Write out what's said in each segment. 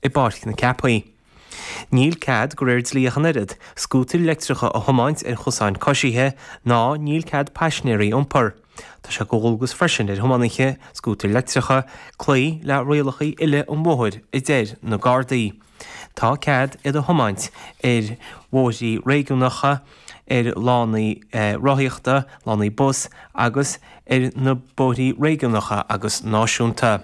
i bPáirc na Ceapaí. Níl cead, de réir dlí ach an oiread, scútair leictreacha a thiomáint ar chosáin coisithe, ná níl cead paisinéirí a iompar. Tá sé de dhualgas freisin ar thiománaithe scútair leictreacha cloí le rialacha uile an bhóthair a deir na Gardaí. Tá cead iad a thiomáint ar bhóithrí réigiúnacha, ar lánaí rothaíochta, lánaí bus agus ar na bóithrí réigiúnacha agus náisiúnta.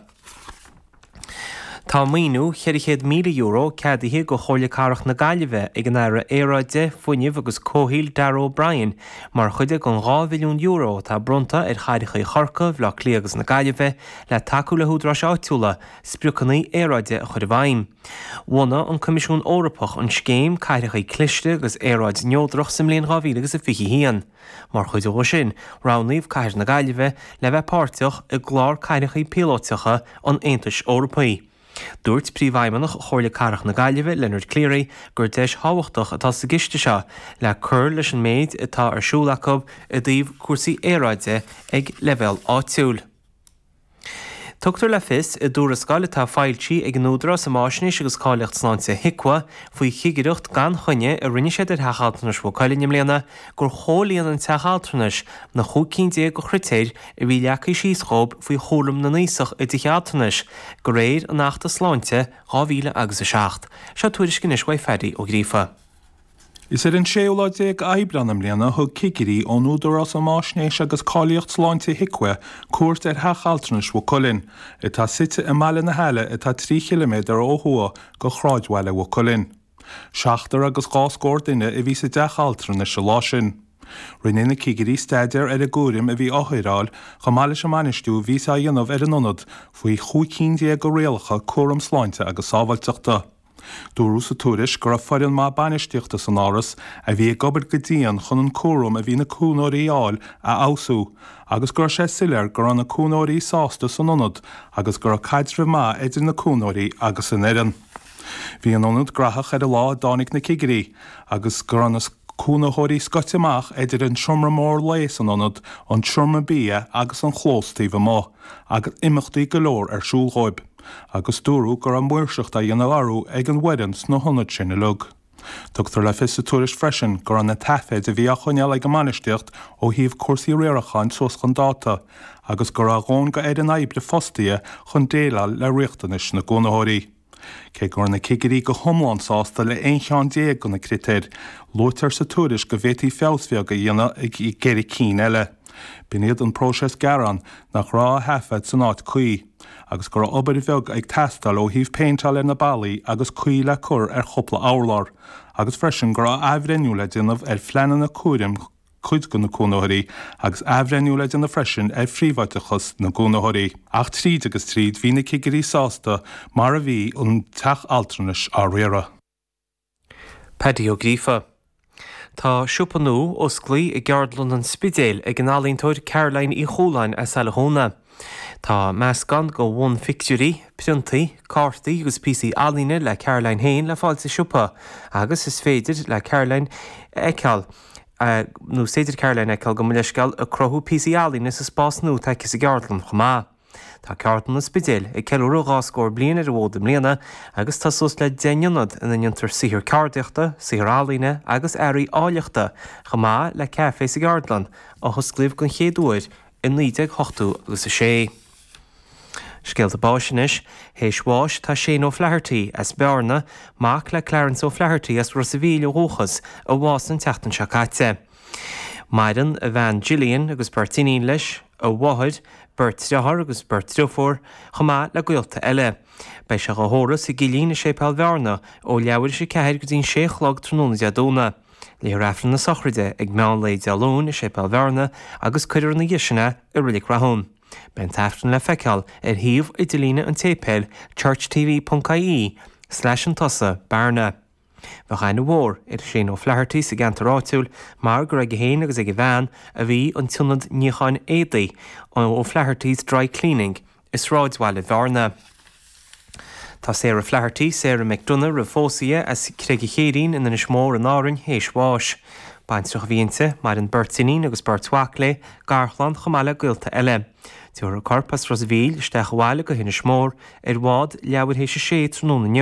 Tá maoiniú €400,000 ceadaithe do Chomhairle Cathrach na Gaillimhe ag an Aire Aeráide, Fuinnimh agus Comhshaoil Darragh O'Brien mar chuid den €2 mhilliún atá bronnta ar chathracha Chorcaí, Bhaile Átha Cliath agus na Gaillimhe le tacú le húdaráis áitiúla spriocanna aeráide a chur i bhfeidhm. Bhunaigh an Coimisiún Eorpach an scéim, Cathracha Cliste agus Aeráid Neodrach, sa mbliain 2021. Mar chuid de sin, roghnaíodh cathair na Gaillimhe le bheith páirteach i gclár cathracha píolótacha an Aontais Eorpaigh. Dúirt Príomhfheidhmeannach Chomhairle Cathrach na Gaillimhe, Leonard Cleary, gur deis thábhachtach atá sa gciste seo le cur leis an méid atá ar siúl acu i dtaobh cúrsaí aeráide ag leibhéal áitiúil. Tugtar le fios i dtuarascáil atá foilsithe ag an Údarás um Fhaisnéis agus Cáilíocht Sláinte, HIQA, faoi chigireacht gan choinne a rinne siad ar Theach Altranais Mhaigh Cuilinn i mbliana gur chomhlíon an teach altranais na chúig cinn déag de chritéir a bhí leagtha síos dhóibh faoi chúram na n-aosach i dtithe altranais de réir an Achta Sláinte 2007. Seo tuairisc anois uaidh Phaddy Ó Gríofa. Is ar an séú lá déag Aibreán i mbliana a thug cigirí ón Údarás um Fhaisnéis agus Cáilíocht Sláinte, HIQA, cuairt ar theach altranais Mhaigh Cuilinn, atá suite i mBaile na hAille atá trí chiliméadar ó thuaidh de shráidbhaile Mhaigh Cuilinn. Seachtar agus dhá scór duine a bhí sa dteach altranais an lá sin. Rinne na cigirí staidéar ar an gcúram a bhí á chur ar fáil chomh maith leis an mbainistiú a bhíothas á dhéanamh ar an ionad faoi chúig cinn déag de rialacha cúram sláinte agus sábháilteachta. Dúradh sa tuairisc go raibh foireann maith bainistíochta san áras a bhí ag obair go dian chun an cúram a bhí na cónaitheoirí a fháil a fheabhsú agus go raibh sé soiléir go raibh na cónaitheoirí sásta san ionad agus go raibh caidreamh maith idir na cónaitheoirí agus an fhoireann. Bhí an ionad graitheach ar an lá a dtáinig na cigirí agus go raibh na cónaitheoirí scoite amach idir an seomra mór lae san ionad, an seomra bia agus an chlós taobh amuigh agus imeachtaí go leor ar siúl dhóibh. agus dúradh go raibh maoirseacht á dhéanamh orthu ag an bhfoireann sna hionaid sin uilig. Tugtar le fios sa tuairisc freisin go raibh na taifid a bhí á choinneáil ag an mbainistíocht ó thaobh cúrsaí riaracháin suas chun dáta agus go raibh a dhóthain de fhoireann oibre fostaithe chun déileáil le riachtanais na gcónaitheoirí. Cé go raibh na cigirí go hiomlán sásta le haon cheann déag de na critéir, luaitear sa tuairisc go bhféadfaí feabhas bheag a dhéanamh i gceithre cinn eile. B'in iad an próiseas gearán, nach raibh á thaifead san áit cuí, agus go raibh obair bheag ag teastáil ó thaobh péinteála ar na ballaí agus caoi le cur ar chúpla urlár, agus freisin go raibh athbhreithniú le déanamh ar phleananna cúraim cuid de na cónaitheoirí agus athbhreithniú le déanamh freisin ar phríobháideachas na gcónaitheoirí. Ach tríd agus tríd bhí na cigirí sásta mar a bhí an teach altranais á riaradh. Paddy Ó Gríofa. Tá siopa nua osclaí i gCeardlann an Spidéil ag an ealaíontóir Caroline Uí Chualáin as Saile Chuanna. Tá meascán go bhunphictiúirí, priontaí, cártaí agus píosaí ealaíne le Caroline féin le fáil sa siopa agus is féidir le Caroline fheiceáil nó is féidir Caroline fheiceáil gabh mo leithscéal, ag cruthú píosaí ealaíne sa spás nua atá aici sa gceardlann chomh maith. Tá Ceardlann an Spidéil ag ceiliúradh dhá scór bliain ar an bhfód i mbliana agus tá suas le deich n-ionad ina ndéantar saothar ceardaíochta, saothar ealaíne agus earraí áilleachta, chomh maith le café sa gCeardlann, a hosclaíodh den chéad uair i naoi déag ochtó agus a sé. Scéalta báis anois, théis bháis tá Shane O'Flaherty as Bearna, mac le Clarence O'Flaherty as Ros a' Mhíl ó dhúchas, a bhásaigh an tseachtain seo caite. Maireann a bhean Gillian agus beirt iníon leis, a mháthair, beirt dearthár agus beirt driofúr, chomh maith le gaolta eile. Beidh sé dhá thórramh sa gcillín i Séipéal Bhearna ó leathuair théis a ceathair go dtí'n sé a chlog tráthnóna Dé Domhnaigh. Léifear Aifreann na sochraide ag meán lae Dé Luain i Séipéal Bhearna agus cuirfear ina dhiaidh sin é i Reilic Rathúin. Beidh an tAifreann le feiceáil ar shuíomh idirlíne an tséipéil, churchtv.ie, slash ansin, bearna. Bheadh aithne mhór ar Shane O'Flaherty sa gceantar áitiúil mar gur aige féin agus ag a bhean a bhí an t-ionad níocháin éadaí, O'Flaherty's Dry Cleaning, i sráidbhaile Bhearna. Tá Sarah Flaherty, Sarah McDonagh roimh phósadh di, as Creig an Chéirín in Inis Mór in Árainn théis bháis. Baintreach a bhí inti, maireann beirt iníon agus beirt mhac léi, garchlann chomh maith le gaolta eile. Tiúrfar a corp as Ros a' Mhíl isteach abhaile go hInis Mór ar bhád leathuair théis a sé tráthnóna inniu.